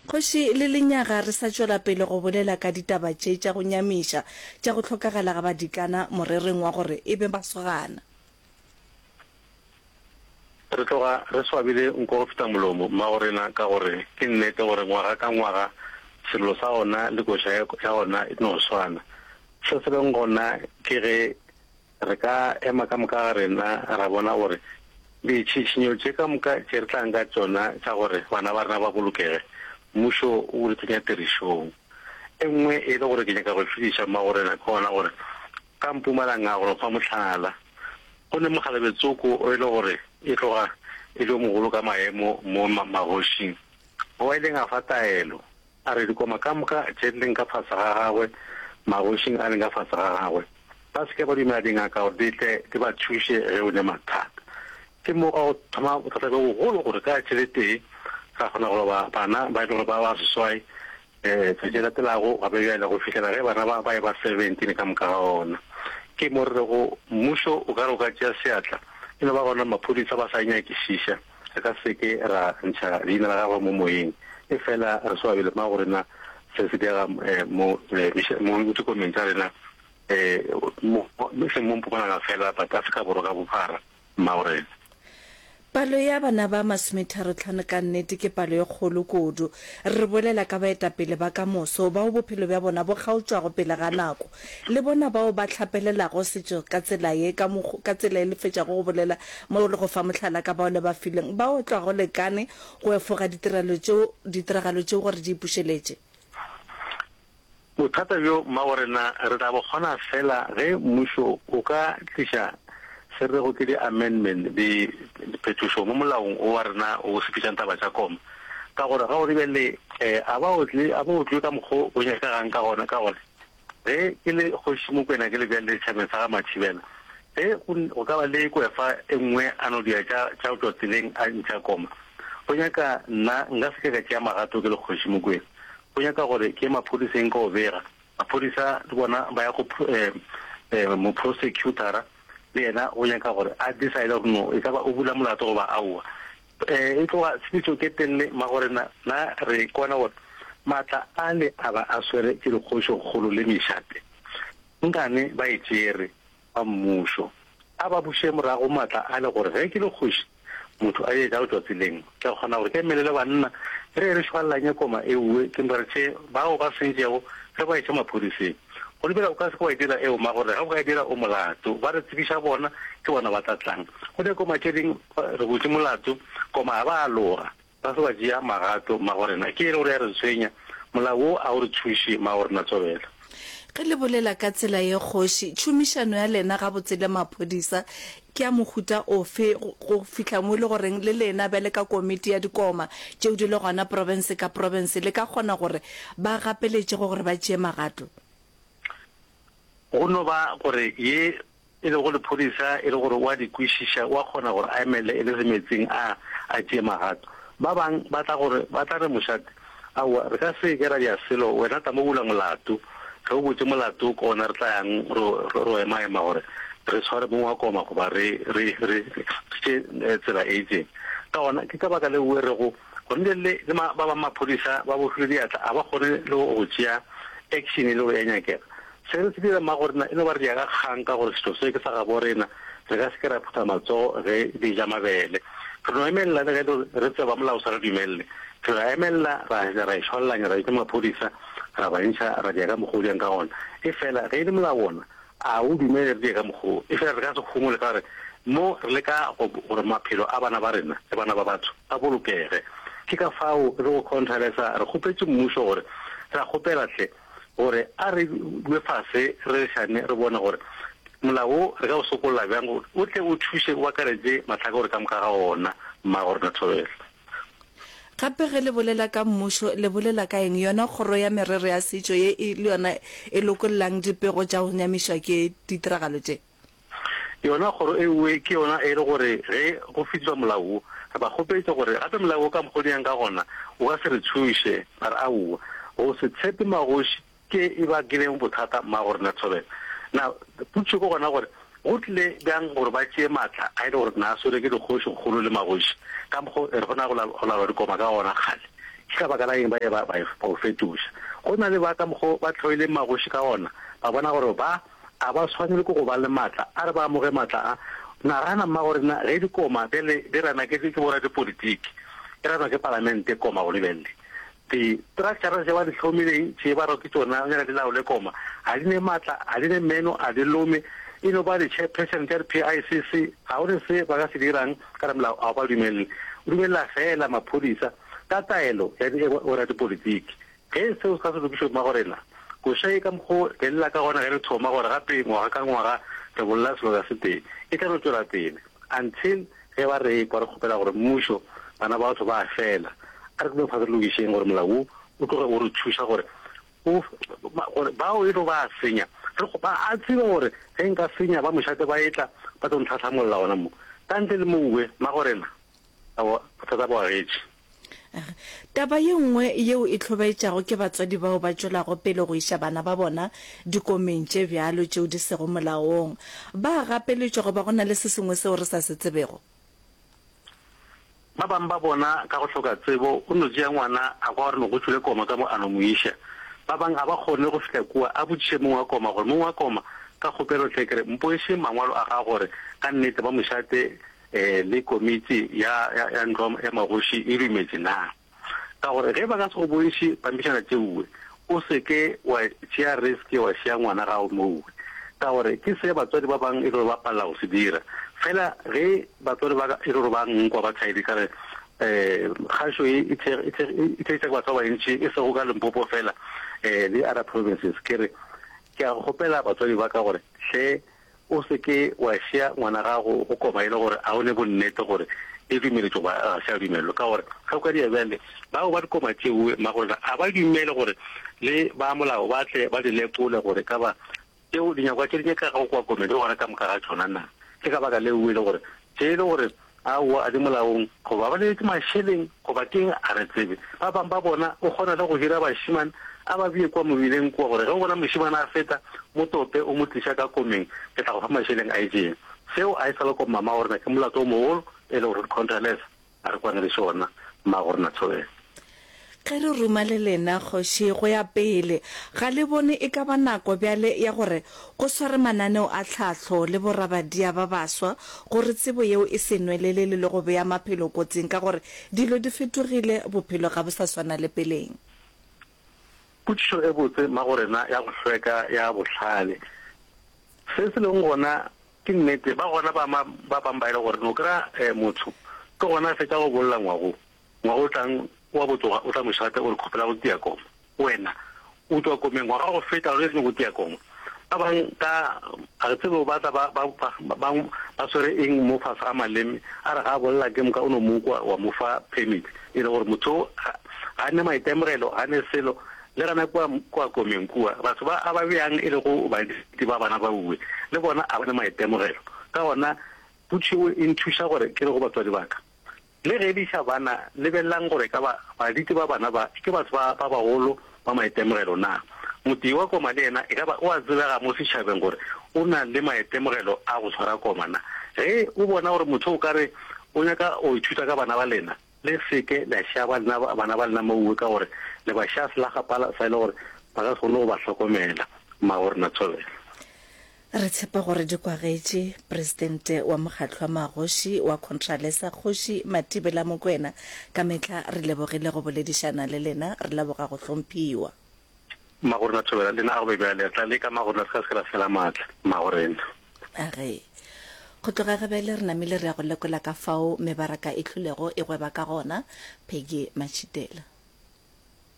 Kgoši le lenyaga re sa tšwela pele go bolela ka ditaba tše tša go nyamiša tša go hlokagala ga badikana morerong wa gore e be masogana. Re tloga re swabile nko go feta molomo, mmagorena, ka gore ke nnete gore ngwaga ka ngwaga sello sa gona le koša ya gona e no swana. Se se leng gona ke ge. Re ka ema ka moka ga rena ra bona gore ditšhišinyo tše ka moka tše re tlang ka tšona tša gore bana ba rena ba bolokege, mmušo o di tsenya tirišong. E nngwe e le gore ke nyaka go šudiša mmagorena ke gona gore ka Mpumalanga go no fa mohlala. Go ne mogalabetsoko o e le gore e tloga e le yo mogolo ka maemo mo magošing, oa ileng a fa taelo. A re, Dikoma ka moka tše di leng ka fase ga gagwe, magošing a leng ka fase ga gagwe, ba se ke ba dumela dingaka gore di tle di ba thuše ge o ne mathata. Ke mo gwa go thoma bothata bjo bogolo gore ka letše le tee ra kgona go roba bana ba e le gore ba ba seswai, letšatši le latelago gape bjale, go fihlela ge bana ba ba eba 17 ka moka ga ona. Ke mo re rego mmušo o ka re o ka tšea seatla e no ba gona maphodisa ba sa e nyakišiša. Re ka se ke ra ntšha leina la gagwe mo moyeng efela re swabile mma go rena se se diega mo mo dikokomeng tša rena mo e seng mo Mpumalanga fela but Afrika Borwa ka bophara mma go rena. Palo ya bana ba masometharo-tlhano ka nnete ke palo e kgolo kudu. Re bolela ka baetapele ba ka moso bao bophelo bja bona bo kgaotšwago pele ga nako. Le bona bao ba hlapelelago setšo ka tsela ye, ka mokgo, ka tsela ye le fetšago go bolela mo le go fa mohlala ka bao le ba fileng, ba otlwa go lekane go efoga ditirelo tšeo, ditiragalo tšeo gore di ipušeletše. Bothata bjo, mmabo rena, re tla bo kgona feela ge mmušo o ka tliša se rego ke di-amendment, di, diphetošo mo molaong wo wa rena wo o sepetšang taba tša koma. Ka gore ga o re bjale, um, a ba otle, a ba otlwe ka mokgo go nyakagang ka gona, ka gore. Ge ke le Kgoši Mokwena ke le bjalele setšhabeng sa ga Mathibela, ge go, go ka ba le kwefa e nngwe a no dira tša, tša go tšwa tseleng a ntšha koma, go nyaka nna nka se ke ka tšea magato ke le Kgoši Mokwena. Go nyaka gore ke ye maphodiseng ke o bega. Maphodisa le bona ba ya go pho, eh, eh, moprosecutora, le yena o nyaka gore a decide gore no e ka ba o bula molato goba aowa. E tloga tshepetšo ke telle, magorena, na re kwana gore maatla ale a ba a swere ke dikgošokgolo le mešate, nkane ba e tšere, ba mmušo. A ba buše morago maatla ale gore ge ke le kgoši, motho a je jalo tšatsi leng. Ke kgona gore ke emelele banna re ye re šwallanye koma ewe ke nrce bao ba sentšego re ba iše maphodiseng. Go lebela o ka se ke wa e dira eo, magore ga o ka e dira o molato. Ba re tsebiša bona, ke bona ba tla tlang. Go ne koma tše ding re butše molato, koma ga ba aloga, ba se ba tšea magato, magorena ke eng gore ya re tshwenya? Molao wo a o re thuše, magorena tswabela. Ge le bolela ka tsela ye kgoši, tšhomišano ya lena gabotse le maphodisa Ke ya mohuta ofe, go fihla mo e le goreng le lena bjale ka komiti ya dikoma tšeo di le gona profense ka profense le ka kgona gore ba gapeletše go gore ba tšee magato? Go no ba gore ye e lego lephodisa e le gore o a di kwešiša, o a kgona gore a emelele e le semetseng a a tšee magato. Ba bang ba tla gore, ba tla re, Mošate, Aowa, re ka se ke ra dira selo. Wena tla mo bula molato. Ge o butše molato ke gona re tla yang ro, ro, ro emaema gore re tshware mong wa koma goba re, re, re, re tše eh, tsela e itseng. Ka gona ke ka baka leo o rego gona bjale le, le ma, ba bangwe maphodisa ba bofilwe diatla, a ba kgone le go, go tšea action e lego ya nyakega. Se re se dira mmagorena e no ba re diega kgang ka gore setšo se ke sa gaborena, re ka se ke ra phutha matsogo ge re eja mabele. Re no emelela le ge re tseba molao o sa re dumelele. Re ra emelela, ra fetša ra e šwallanya, ra bitša maphodisa, ra ba ntšha, ra diega ka mokgwa o diang ka gona. Efela ge e le molao wona, a o dumele re die ka mokgwa wo? Efela re ka se humole ka gore mo re leka go gore maphelo a bana ba rena le bana ba batho a bolokege. Ke ka fao re go Khonthale sa re kgopetše mmušo gore, Re a kgopela hle, gore a re dule fase re rerišane re bone gore molao wo re ka o sokolla bjang gore o tle o thuše o akaretše mahlaka gore ka moka ga ona mmago rena Thobela. Gape ge le bolela ka mmušo le bolela ka eng? Yona kgoro ya merero ya setšo ye e le yona e lokollang dipego tša go nyamišwa ke ditiragalo tše? Yona kgoro e nngwe ke yona e re gore ge go fihliswa molao wo, re ba kgopetša gore gape molao wo ka mokgwa o dirang ka gona o ka se re thuše. Ba re, Aowa, go se tshepe magoši ke e bakileng bothata mma go rena thobela. Na potšišo ke gona gore, go tlile bjang gore ba tšee matla a e le gore na a swerwe ke dikgošikgolo le magoši ka mokgwa o e re go na go laolwa dikoma ka gona kgale? Ke ka baka la eng ba ile ba o fetoša? Go na le ba ka mokgwa o ba hloileng magoši ka gona, ba bona gore ba a ba swanelwe ke go ba le matla, a re ba amoge matla a. Nagana, mma, gore na ge dikoma bjale di ranwa ke, ke boradipolitiki, e ranwa ke palamente, koma, o lebelele di structures tše ba di hlomileng, tše ba rwa ke tšona bjale di laole koma, ga di ne matla, ga di ne meno, ga di lome, e no ba di-chairperson tša di-PICC, ga go ne se ba ka se dirang ka re molao a o ba dumelele, o dumelela feela maphodisa ka taelo ya di, boradipolitiki. Ge seo se ka se lokišwe, mmago rena, koša ye ka mokgo re lla ka gona ge re thoma gore gape ngwaga ka ngwaga re bolla seloka se tee, e tla no tšwela pele until ge ba re ekwa re kgopela gore mmušo, bana ba batho ba a fela. A re tlileng fase re lokišeng gore molao wo o tloge o re thuša gore o, gore bao e tlo ba a senya, re kgo, ba a tseba gore ge nka senya ba mošate ba etla ba tlo ntlhahlamolla gona mo. Ka ntle le mouwe, mmago rena, aowa, bothata bo agetše. Taba ye nngwe yeo e hlobaetšago ke batswadi bao ba tšwelago pele go iša bana ba bona dikomeng tše bjalo tšeo di sego molaong. Ba a gapeletšwa goba go na le se sengwe seo re sa se tsebego? Ba bangwe ba bona ka go hloka tsebo o no tšea ngwana a kwa gore no go tšwile koma ka mo a no mo iša. Ba bangwe ga ba kgone go fihla kua a botšiše mong wa koma gore, Mong wa koma, ka kgopelo hle ke re mpoešeng mangwalo a gago gore ka nnete ba mo šate le komiti ya, ya, ya ntlo ya magoši e dumetše na? Ka gore ge ba ka se go bontšhe pampitšana tšeuwe, o se ke wa tšea risk wa šiya ngwana gago mouwe. Ka gore ke se batswadi ba bang e le gore ba palela go se dira. Fela ge batswadi ba ka e le gore ba nkwa ba thaile ka re, um kgašo ye e thekg-, e thekg-, e theetša ke batho ba bantši e sego ka Limpopo fela, um le other provinces, ke re ke a kgopela batswadi ba ka gore hle O se ke wa šea ngwana gago go koba e le gore a o ne bonnete gore e dumeletšwe goba ga se a dumelelwe. Ka gore ge o ka dira bjale, bao ba dikoba tšeo magorena a ba dumele gore le ba molao ba tle ba di lekole gore e ka ba tšeo dinyakwa tše di nyakago kwa komeng di gona ka moka ga tšona na. Ke ka baka leo e le gore tše e le gore Aowa, a di molaong. Goba ba leletše mašeleng, goba ke'ng, a re tsebe. Ba bang ba bona o kgona le go hira bašeman a ba bee kua mobileng kua, gore ge o bona mošeman a feta, mo tope o mo tliša ka komeng, ke tla go fa mašeleng a itšeng. Seo a e sa le kwa mama wa rena ke molato o mogolo, e lego Ruth Contreras a re kwane le sona, mma go rena Thobela. Ge re ruma le lena, kgoši, go ya pele, ga le bone e ka ba nako bjale ya gore go swarwe mananeo a tlhahlo le borabadia ba baswa gore tsebo yeo e se nwelelele le go bea maphelo kotsing ka gore dilo di fetogile, bophelo ga bo sa swana le peleng? Potšišo e botse mago rena ya go hlweka ya bohlale. Se se lego gona ke nnete, ba gona ba ba bangbaile gore no kry-a motho ke gona a fetša go bolla ngwagong. Ngwaga o tlang wa go tloga o tla mo šata o re kgopela go tia koma. Wena o tšwa komeng ngwaga wa go feta ge re tlo go tia koma. Ba bang ka ga re tsebe ba tla ba bang ba swere eng mo fase ga maleme a re ga a bolela ke moka o no mo kwa wa mo fa permit e le gore motho ga a ne maitemogelo ga ne selo le gana kwa kwa komeng kua batho ba a ba bjang e le go ba di ba bana ba uwe le bona a ba ne maitemogelo ka gona putšhiwe e nthuša gore ke re go batswadi baka Le ge di sa bana, lebelelang gore ka ba baditi ba bana ba ke batho ba ba bagolo ba maitemogelo. Na motee wa koma le yena e ka ba o a tsebega mo setšhabeng gore o na le maitemogelo a go tshwara koma? Na ge o bona gore motho o ka re o nyaka go ithuta ka bana ba lena, le se ke la šaba lena bana ba lena mouwe ka gore le ba xa selagapala sa e le gore ba ka se kgone go ba hlokomela. Mmago Rena Thobela. Re tshepa gore di kwagetše Presidente wa Mokgatlo wa Magoši wa Contralesa Kgoši Matibela Mokwena. Ka mehla re lebogile go boledišana le lena. Re leboga go hlomphiwa. Magorena Thobela le na a go be bjale re tla leka Magorena re ka se ke ra fela maatla Magorena. A re, Go tloga Gabele re namile re ya go lekola ka fao mebaraka e hlulego e gweba ka gona. Peggy Matšhitela.